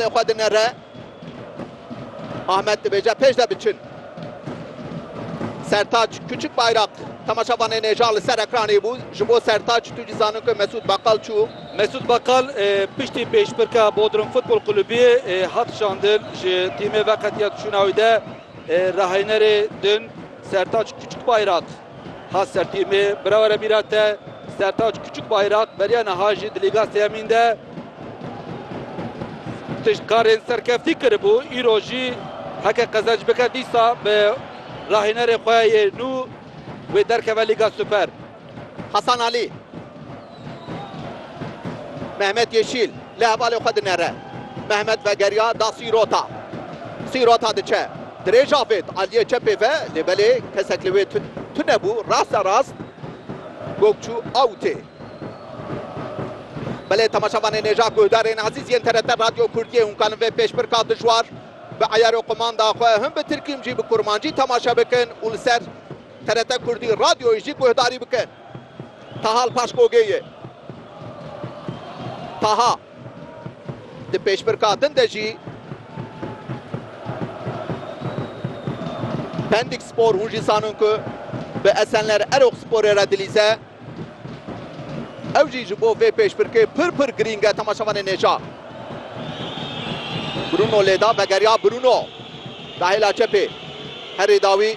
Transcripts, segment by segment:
Lê xwe dinere. Ahmet dibêje pêş de biçin. Sertaç Küçük Bayrak temaşavanê nêja li ser ekranê bû. Ji bo Sertaç tu jî zanin ku Mesûd Bakal çû. Mesûd Bakal piştî pêşbirka Bodrum Futbol Kulubî hat şandin ji tîmê veketiya çûna wî de raheynerê din Sertaç Küçük Bayrak. Xas sertîrmê birawere mîra te Sertaç Kuçuk Bayrak beriya niha jî di Lîga Sêyemîn de tişt karên serkeftî kiribû, îro jî heke qezenc bike dîsa bi rahênerê xwe yê nû wê derkeve Lîga Super. Hasan Alî. Mehmet Yeşîl li hevalê xwe dinere. Mehmet vegeriya da sîrota. Sîrota diçe. Dirêj avêt aliyê çepê ve lê belê kesek li wê tune bû raste rast gog çû awtê. Belê temaşavanê nêja guhdar ên ezîz yên TRT Radyo Kurdiyê hûn kanin vê pêşbirka dijwar bi eyar û qumanda xwe him bi tirkî him jî bi kurmancî temaşe bikin û li ser TRT Kurdî Radyoyê jî guhdarî bikin. Taha li paş Gogê ye. Taha di pêşbirka din de jî Pendik Spor hûn jî zanin ku bi Esenler Eroksporê re dilîze. Ew jî ji bo vê pêşbirkê pir pir girîng e temaşevanê nêja. Bruno lêda vegeriya Bruno dahêla çepê herî dawî.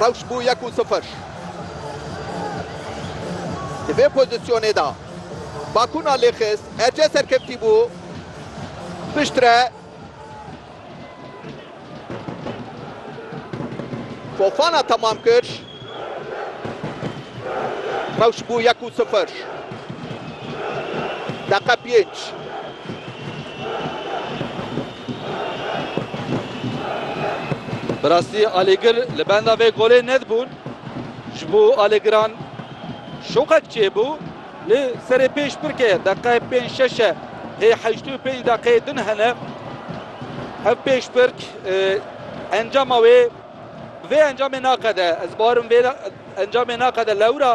Rewş bû yek û sifir. Di vê pozîsyonê de Bakuna lêxist, Ece serkeftî bû piştre Fofana temam kir. Rewş bû yek û sifir. Deqe pênc. Bi rastî alîgir li benda vê golê nedibûn. Ji bo alîgiran şoqek çêbû. Li serê pêş pirke deqe pênc şeş e. Hê heşt û pênc deqeyê din hene. Ev pêş pirk encama wê Vê encamê naqede, ez barim vê encamê naqede lewra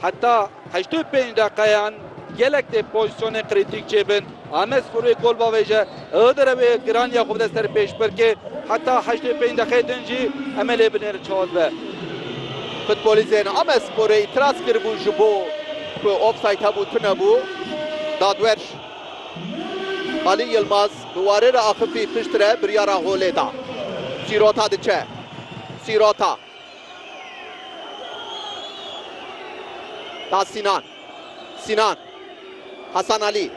heta heştê û pênc deqeyan gelek tê pozîsyonên krîtîk çêbin. Amed Sporê gol bavêje, Iğdır ew ê giraniya xwe bide ser pêşbirkê, heta heştê û pênc deqeyê din jî em ê lê binêrin çawa dibe. Futbolîstên Amed Sporê îtiraz kiribûn ji bo ku ofsayd hebû tunebû. Dadwer. Alî Yilmaz bi warê re axifî pişt re biryara holê da. Sîrota diçe. Sîrota. Da Sînan. Sînan. Hasan Alî.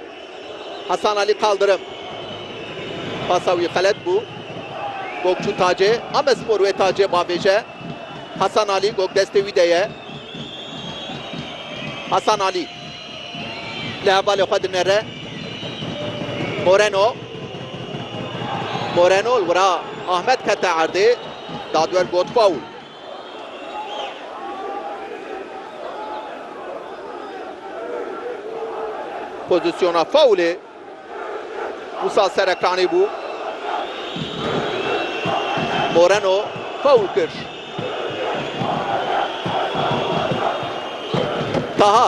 Hasan Alî Kaldirim. Pasa wî xelet bû. Gok çû tacê. Amespor wê tacê bavêje. Hasan Alî gok destê wî de ye. Hasan Alî. Li hevalê xwe dinere Moreno. Moreno li wira Ahmed kete erdê. Dadwer got faul. Pozisyona faulê Musa Serekanî bû. Moreno faul kir. Taha